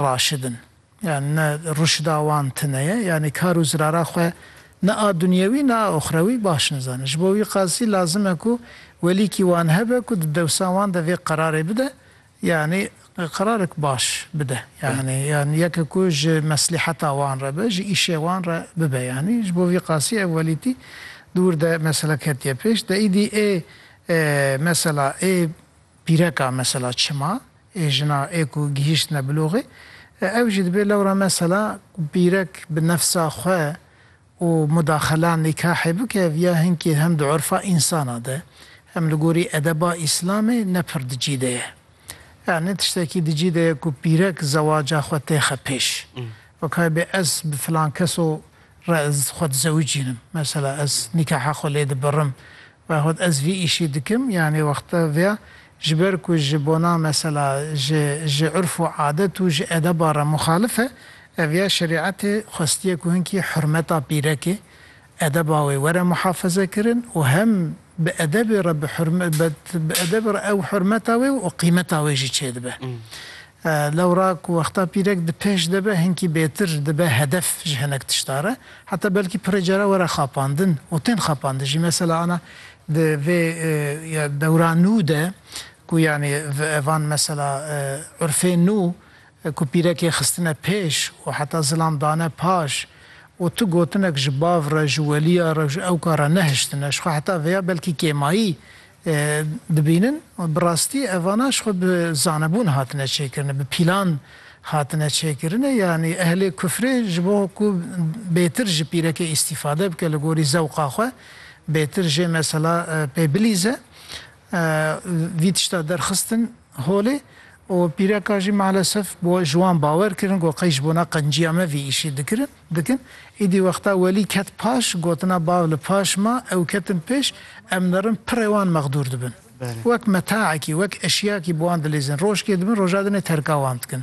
Raşid in. Yanî ne rûşda wan tine ye, yanî kar û zirara xwe ne a dunyewî ne a oxrewî baş nizane. Ji bo wî qasî lazim e ku welîkî wan hebe ku di dewsa wan de vê qerarê bide, yanî qerarek baş bide. Yanî yanî yeke ku ji meslîheta wan re be, ji îşê wan re bibe. Yanî ji bo vî qasî ev welîtî di wir de mesela ketiye pêş. De îdî ê mesela ê. Pîreka mesela çima ê jina ê ku gihîştine biloxê ew jî dibê lewra mesela ku pîrek bi nefsa xwe û mudaxela nîkahê bike viya hinkî hem di urfa însanan de hem li gorî edeba îslamê ne pir di cî de ye. Yanî tiştekî di cî de ye ku pîrek zewaca xwe têxe pêş. Wekayê bê ez bi filan keso re ez xwe dizewicînim. Mesela ez nîkaha xwe lê dibirim Wexwt ez vî îşî dikim yanê wexta via ji ber ku ji bona mesela ji ji urf û adet û ji edeba re muxalif e, ev ya şerîetê xwestiye ku hinkî hurmeta pîrekê, edeba wê were muhafeze kirin û hem bi edebê re bi hurm bi edebê re ew hurmeta wê û qîmeta wê jî çêdibe. Lewra ku wexta pîrek di pêş de be hinkî bêtir dibe hedef ji hinek tişta re. Heta belkî pirê cara were xapandin û tên xapandin jî. Mesela ana di vê ya dewra nû de ku yanî van mesela urfê nû ku pîrekê xistine pêş û heta zilam dane paş û tu gotinek ji bav re, ji weliya re, ji ewka re nehiştine. Jixwe heta vêya belkî kêmayî dibînin û bi rastî evana ji xwe bi zanebûn hatine çêkirinê, bi pîlan hatine çêkirinê, yanî ehlê kufrê ji bo ku bêtir ji pîrekê îstîfade bike li gorî zewqa xwe, bêtir jê mesela pê bilîze, vî tişta derxistin Holê û pîreka jî malesef bo ji wan bawer kirin ku qey ji bona qenciya me vî îşî dikirin, dikin. Îdî wexta Welî ket paş, gotina bav li paş ma, ew ketin pêş, em nirin pirê wan mexdûr dibin. Wek metaekî, wek eşyakî bi wan dilîzin. Rojkê dibin, roja dinê terka wan dikin.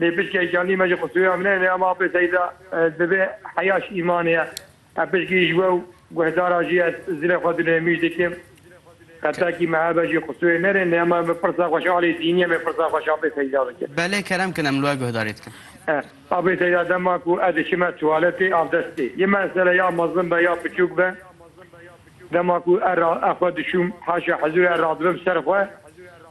Lê pişkî îşanî me ji xûsuya min hene ama apê seyda divê heya ji îmanê ye. Ev pişkî ji we û guhdaran jî ez zilê xwe di nêmîj dikim. Qetekî me hebe jî xûsuyê nerê lê hema min pirsa xwe ji alî dînî em ê pirsa xwe ji apê seyda bikim. Belê kerem kin em li we guhdarî dikin. Apê seyda dema ku ez diçime tuwaletê avdestê yê mesele ya mezin be ya piçûk be dema ku ez xwe dişûm haşa hizûrê ez radibim ser xwe,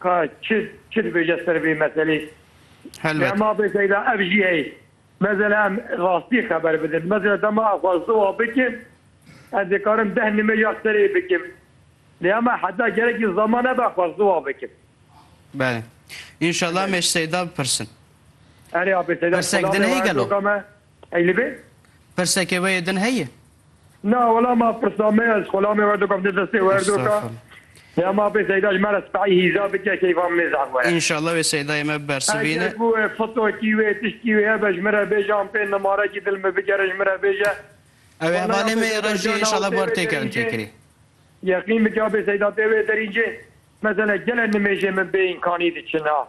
Ka çi çi dibêje ser vê meselê. Helbet. Dema bê seyda ev jî heye. Mesela em rastiyê xeber bidin. Mesela dema ez xwest ziwa bikim ez dê karim deh nimêja serê bikim. Lê hema heta gerekî zaman hebe ez xwest ziwa bikim. Belê. Înşallah em ê ji seyda bipirsin. Erê abê seyda Pirsek din heye gelo? Ey li vê. Pirseke wê yê din heye? Na wela ma pirsa me ya ji xwe lamê werdo kevne destê we her do ka. Ya ma pê Seyda ji me re spehî hîza bike keyfa min ê zehf were. Înşallah wê Seydayê me bibersivîne. Eger ku wê fotokî wê tiştî wê hebe ji min re bêje an pê nimarekî dil min bigere ji min re bêje. Ew ê hevalê me yê reş jî înşallah bar tê kirin tê kirî. Yeqîn bike ya pê Seyda tê wê derî cê. Mesele gelek nimêjên min bê înkanî diçin a.